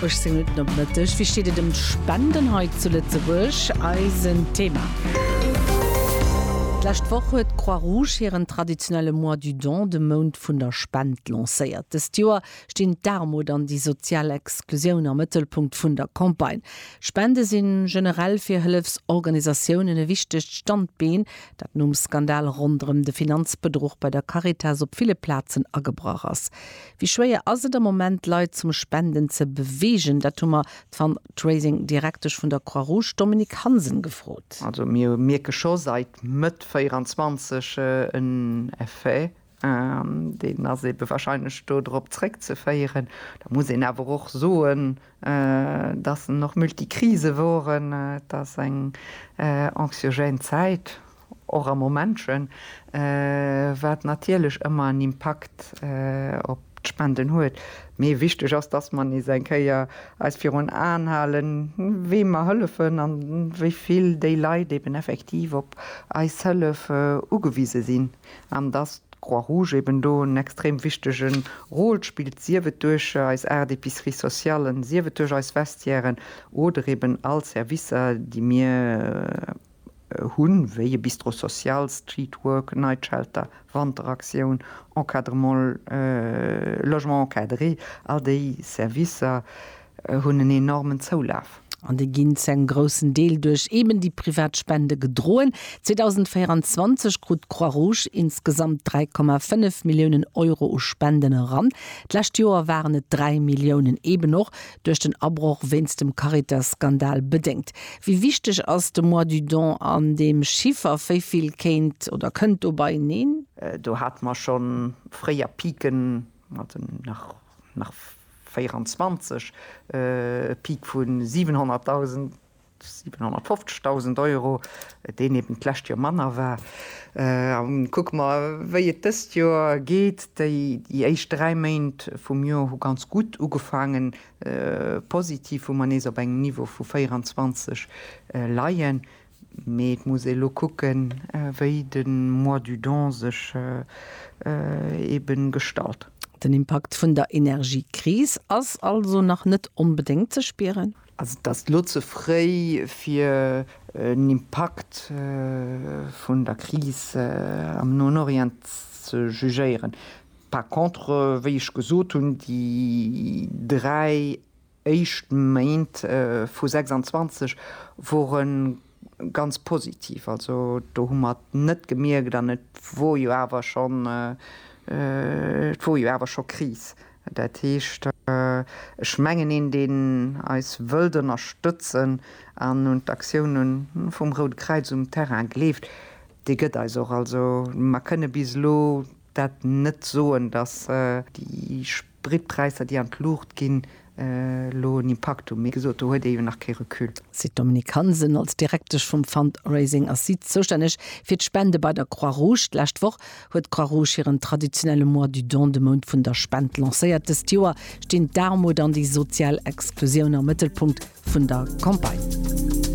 18 Minutten op Mëtteg. Wéi steet et ëm d'Spenden hei zu Lëtzebuerg? Eisen Thema. D'lescht Woch huet d'Croix-Rouge hiren traditionelle Mois du Don, de Mount vun der Spend, lancéiert. Dëst Joer stinn d'Aarmut an déi sozial Exklusioun am Mëttelpunkt vun der Campagne. Spende sinn generell fir Hëllefsorganisatiounen e wichtegt Standbeen, dat nom Skandal ronderëm de Finanzbedruch bei der Caritas op ville Plazen agebrach ass. Wéi schwéier ass et am Moment d'Leit zum Spenden ze beweegen? Dat hu mer d'Fundraising Direktesch vun der Croix Rouge, d'Dominique Hansen gefrot. Also mir mierke scho seit Mëtt 24 en Effet an deen ass ebe wahrscheinlech do drop zréck ze féieren. Da muss een awer och soen, dass en och Multikrise woren, et ass eng anxiogène Zäit. Och a Momentchen, wat natierlech ëmmer en Impakt op d'Spenden huet. Mee wichteg ass, dass mer nees eng Kéier eis virun Aen halen, weem mer hëllefen an wéi vill déi Leit eben effektiv op eis Hëllef ugewise sinn. An dass d'Croix-Rouge eben do en extrem wichtege Rôle spillt, sief et duerch eis aacht Epiceries sociallen, sief et duerch eis Vestiairen oder eben all Servicer, déi mir. hunn, wéi e Bistro social, Street Work, Night Shelter, Wanteraktioun, Encadrement, Logement encadré, all déi Servicer hunn en enormen Zoulaf. An déi ginn zu engem groussen Deel duerch eben déi privat Spende gedroen. 2024 krut d'Croix-Rouge insgesamt 3,5 Milliounen Euro u Spenden eran. D'lescht Joer waren et 3 Milliounen, eben och Duerch den Abroch wéinst dem Caritas-Skandal bedéngt. Wéi wichteg ass de Mois du Don an deem Chiffer? Wéi vill kéint oder kënnt dobei neen? Do hate mer scho fréier Piken, also nach 24 e Pik vu 700.000, 750.000 Euro, deen eben d'lescht Joer manner war. A kucke mer, wéi et dëst Joer geet. Déi éischt dräi Méint vum Joer hu ganz gutt ugefaangen, positiv, wou mer nees op engem Niveau vu 24 leien. Mee et muss ee lo kucken, wéi de Mois du Don sech eben gestalt. Den Impakt vun der Energiekris ass also nach net onbedéngt ze spieren? Also et ass elo ze fréi fir en Impakt vun der Kris am Noen Orient ze jugéieren. Par contre, wéi ech gesot hunn, déi dräi éischt Méint vu 26 wore ganz positiv. Also do hu mer et net gemierkt an et wor jo awer schonn, et wor jo awer scho Kris. Dat heescht, ech mengen, een deen eis wëllt ënnerstëtzen an un d'Aktioune vum Route Kräiz um Terrain gleeft, dee gëtt eis och. Also mer kënne bis elo Dat net soen, datt déi Spritpräisser, déi an d'Luucht ginn, elo en Impakt hunn, mee gesot, do huet ee jo nach kee Recul. Sid Dominique Hansen, Als Direktesch vum Fundraising ass si zoustänneg fir d'Spende bei der Croix-Rouge. D'lescht Woch huet d'Croix-Rouge hiren traditionelle Mois du don, de Mount vun der Spend, lancéiert. Dëst Joer stinn d'Aarmut an déi sozial Exklusioun am Mëttelpunkt vun der Campagne.